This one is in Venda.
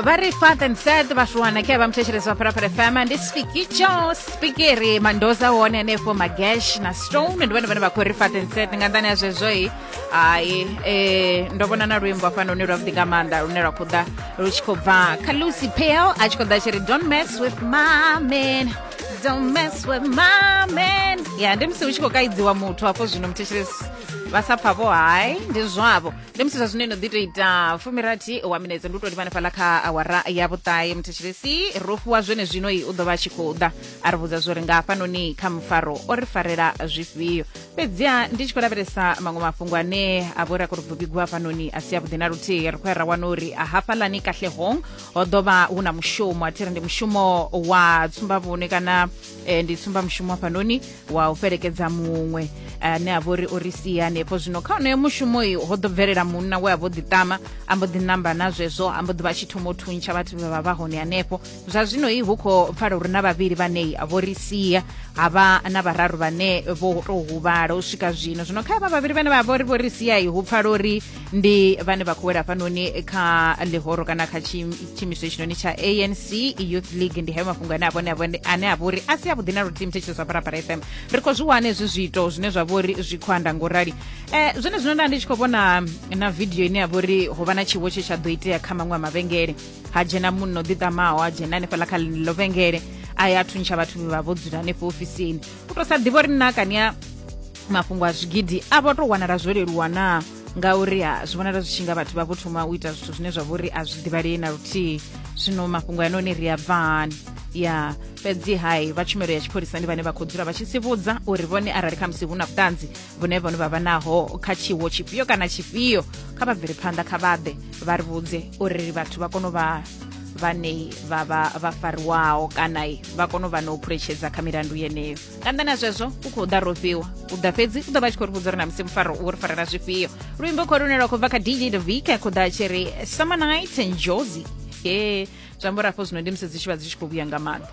vari father and sad vashuwana ke vamuthetshelezwa pharapara fm ndi spikicho spikiri mandoza wone hanefho magesh na stone ndi vhone vhane vha khou ri father and sad nga nḓani ya zwezwoi hai eh, ndo vhona na luimbo afhano lune lwavhuḓi nga maanḓa lune lwa khou ḓa lu tshi khou bva kha lucy pale a tshi khou ḓa tshi ri don't mess with my man don't mess with my man ya ndi musi hu tshi khou kaidziwa muthu hafho zwino muthetshelezi vha sa pfa vho hai ndi zwavho ndi musi zwa zwino ino ḓi to ita fumirathi wa minetse ndi u to livhana fhaḽa kha awara ya vhuṱahe muthetshelesi ro fhiwa zwene zwino i u ḓo vha a tshi khou ḓa a ri vhudza zwori nga hafhanoni kha mufaro o ri farela zwifhio fhedziha ndi tshi khou lavhelesa maṅwe mafhungo ane a vhori a khou ri bvubigiwa hafhanoni a si a vhuḓi na luthihi ri khou ya ra wana uri a hafhaḽani kahlehong ho ḓo vha hu na mushumo a thi ri ndi mushumo wa tsumbavhune kana e, ndi tsumbamishumo hafhanoni wa u fhelekedza muṅwe ane a vha uri o ri sia hanefho zwino kha onoyo mushumo uyu ho ḓo bvelela munna we a vho ḓiṱama a mbo ḓi namba na zwezwo a mbo ḓi vha tshi thoma u thuntsha vhathu vhe vha vha hone hanefho zwa zwino i hu khou pfala uri na vhavhili vhanei a vho ri sia ha vha na vhararu vhane vho tou huvhala u swika zwino zwino kha vha vhavhili vhane vha vha uri vho ri sia i hu pfala uri ndi vhane vha khou wela hafhanoni kha ḽihoro kana kha tshiimiswa itshinoni tsha anc youth league ndi hayo mafhungo ane avhone ane a vha uri a si a vhuḓi na luthihi muthetshiso zwa parapara fm ri khou zwi wana hezwi zwiito zwine zwa vha uri zwi khou anda ngorali um eh, zwone zwino nda ndi tshi khou vhona na vidio ine ya vha uri ho vha na tshiwo tshe tsha ḓo itea kha maṅwe a mavhengele ha dzhena munna o ḓiṱamaho ha dzhena hanefhaḽa kha ḽo vhengele a ya thuntsha vhathu vha vho dzula hanefho ofisini u to sa ḓivha uri nna kania mafhungo a zwigidi a vho tou wanala zwo leluwa naa ngauri ha zwi vhonala zwi tshi nga vhathu vha vho thoma u ita zwithu zwine zwa vha uri a zwi ḓivhalei na luthihi zwino mafhungo ya noni ri a bvani ya fhedzi hai vha tshumelo ya tshipholisa ndi vhane vha khou dzula vha tshi sivhudza uri vhone arali kha musi hu na vhuṱanzi vhune vhone vha vha naho kha tshiwo tshifhio kana tshifhio kha vha bvele phanḓa kha vhaḓe vha ri vhudze uri vhathu vha kone u vha vhane vha vha vha fariwaho kana vha kone u vha na u phuletshedza kha milandu yeneyo nga nnḓa na zwezwo u khou ḓa rofhiwa u ḓa fhedzi u ḓo vha tshi khou ri vhudza uri na musi mufaro u ri farela zwifhio luimbo khou lune lwa khou bva kha dj davika khou ḓa tshi ri summer night and josi e zwi amba uri afho zwino ndi musi dzi tshi vha dzi tshi khou vhuya nga maanḓa